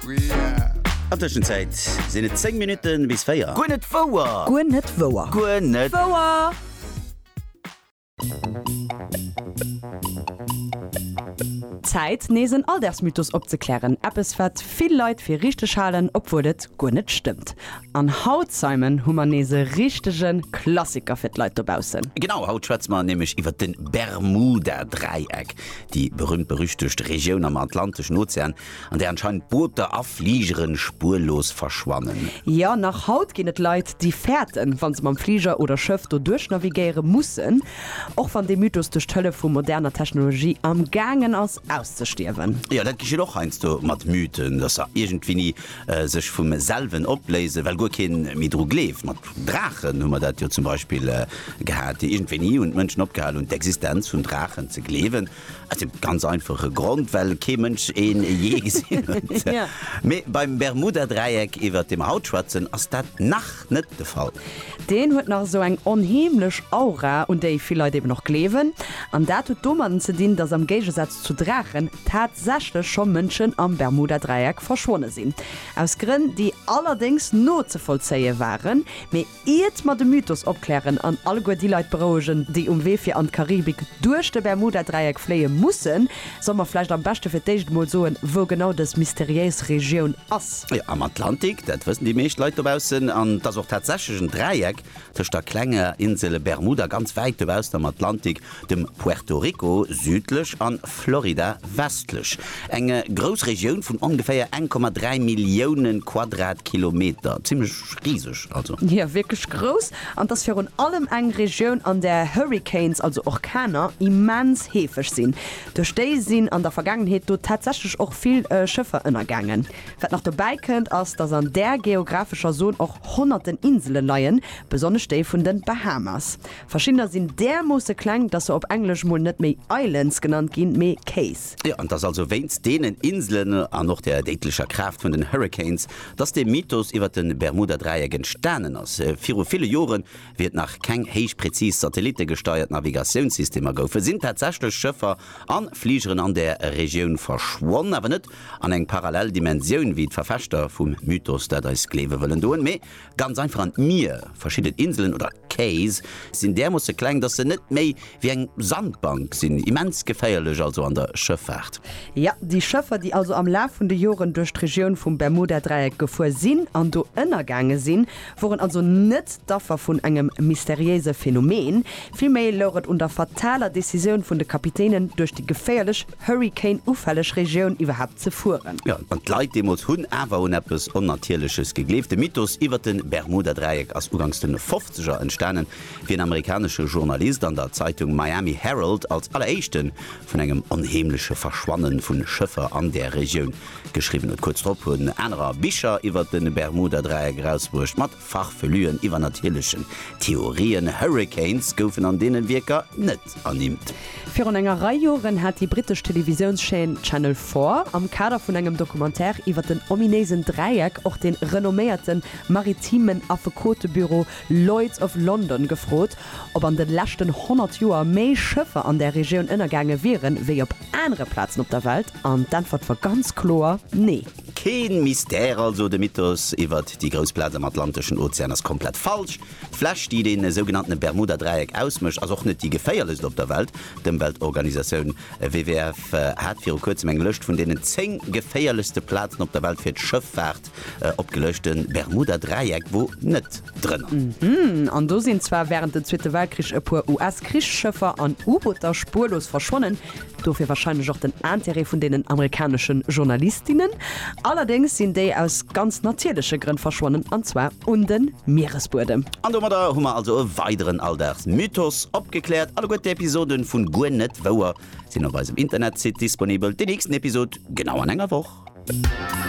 An Tëschenzäit sinn et 10 Minutten bis 4. Guer net wouer! Guer net wouer! Guer net wouer! Zäit nees en Alldagsmythos opzeklären, eppes wat vill Leit fir richteg halen, obwuel et guer net stëmmt. An haut, Simon, hu mer nees e richtege Klassiker fir d'Leit dobaussen. Genau, haut schwätze mer nämlech iwwer de Bermuda-Dräieck, déi berühmt-berüchtegt Regioun am Atlanteschen Ozean, an där anscheinend Booter a Fligeren spuerlos verschwannen. Jo, nach haut ginn et Leit, déi fäerten, wa se mam Fliger oder Schëff do duerchnavigéiere mussen, och wann dee Mythos duerch d'Hëllef vu moderner Technologie am gaangen ass auszestierwen. Jo, dat geschitt och heiansdo mat Mythen, dass se iergendwéini sech vum selwen opléisen, well guer keen méi dru gleeft. Mat Draachen hu mer dat jo zum Beispill gehat, déi iergendwéini hunn d'Mënschen opgehal hunn, d'Existenz vun Draachen ze gleewen. Aus dem ganz einfache Grond, well kee Mënsch een jee gesinn huet. Mee beim Bermuda-Dräieck, iwwert dee mer haut schwätzen, ass dat nach net de Fall. Deen huet nach esou eng onheemlech Aura, un déi vill Leit eben och gleewen. An dat huet domatten ze dinn, dass am Géigesaz zu Draachen tatsächlech scho Mënschen am Bermuda-Dräieck verschwonne sinn. Aus Grënn, déi allerdéngs nozevollzéie waren. Iert mer de Mythos opklären an alleguer déi Leit berouegen, déi um Wee fir an d'Karibik duerch de Bermuda-Dräieck fléie mussen, solle mer vläicht am beschte fir d'éischt emol soen, wou genau dës mysteriéis Regioun ass. Jo, am Atlantik, dat wëssen déi meescht Leit dobaussen. An et ass och tatsächlech en Dräieck tëscht der klenger Insel Bermuda, ganz wäit dobaussen am Atlantik, dem Puerto Rico südlech an Florida westlech, eng grouss Regioun vun ongeféier 1,3 Millioune Quadratkilometer, zimlech riseg also. Jo, wierklech grouss, an 't ass virun allem eng Regioun an där Hurricanes, also Orkaner, immens heefeg sinn. Duerch déi sinn an der Vergaangenheet do tatsächlech och vill Schëffer ënnergaangen. Wat nach dobäi kënnt, ass datt an där geographescher Zon och honnerten Insele leien, besonnesch déi vun de Bahamas. Verschiddener sinn därmoosse kleng, dass se op Englesch mol net méi Islands genannt ginn, mee Cays. Jo, an et ass also wéinst deenen Inselen an och der déidlecher Kraaft vun den Hurricanes, dass de Mythos iwwer de Bermuda-Dräieck entstanen ass. Viru ville Joren, wéi et nach keng héich präzis satellitegesteiert Navigatiounssystemer goufen, sinn tatsächlech Schëffer a Fligeren an där Regioun verschwonn, awer net an eng parallel Dimensioun, wéi d'Verfechter vum Mythos dat eis gleewe wëllen doen, mee Ganz einfach an d'Mier. Verschidden Inselen, oder Cays, sinn därmoosse kleng, dass se net méi wéi eng Sandbank sinn. Immens geféierlech also an der Schëffaart. Jo, déi Schëffer, déi also am Laf vun de Joren duerch d'Regioun vum Bermuda-Dräieck gefuer sinn an do ënnergaange sinn, woren also net d'Affer vun engem mysteriéise Phänomen. Villméi louch et un der fataler Decisioun vun de Kapitänen, duerch déi geféierlech Hurrikan-ufälleg Regioun iwwerhaapt ze fueren. Jo, an d'Leit deemools hunn awer un eppes Onnatierleches gegleeft. De Mythos iwwer de Bermuda-Dräieck ass uganks de Fofzeger entstanen, wéi en amerikanesche Journalist an der Zeitung Miami Herald als alleréischte vun engem onheemleche Verschwanne vu Schëffer an där Regioun geschriwwen huet. Kuerz drop hunn anerer Bicher iwwer de Bermuda-Dräieck erausbruecht, mat Farfelüen, iwwernatierlechen Theorien, Hurricanes goufen an deenen Wierker net ernimmt. Virun enger Rei Joren hat déi brittesch Televisiounschaîne Channel Four am Kader vun engem Documentaire iwwer den ominéisen Dräieck och de renomméierten maritimen Affekotebüro Lloyd's of London gefrot, ob an de leschten 100 Joer méi Schëffer an där Regioun ënnergaange wieren, wéi op anere Plazen op der Welt. An d'Äntwert war ganz kloer, Nee! Keen Mystère also, de Mythos iwwert déi grouss Plaz am Atlanteschen Ozean ass komplett falsch. D'Fläch, déi den sougenannten Bermuda-Dräieck ausmécht, ass och net déi geféierlechst op der Welt. D'Ëmweltorganisatioun WWF hat viru kuerzem eng Lëscht vun deenen 10 geféierlechste Plazen op der Welt fir d'Schëffaart opgeluecht. De Bermuda-Dräieck wor net drënner. An do sinn zwar wärend den Zweete Weltkrich e puer US-Krichsschëffer an U-Booter spuerlos verschwonnen, Dofir wahrscheinlech och den Intérêt vun deenen amerikaneschen Journalistinnen. Allerdéngs sinn déi aus ganz natierleche Grënn verschwonnen, an zwar un de Mieresbuedem. An domadder hu mer also e weideren Alldagsmythos opgekläert. Alleguer d'Episoden vu Guer net wouer sinn op eisem Internetsite disponibel. Déi nächsten Episode genau an enger Woch.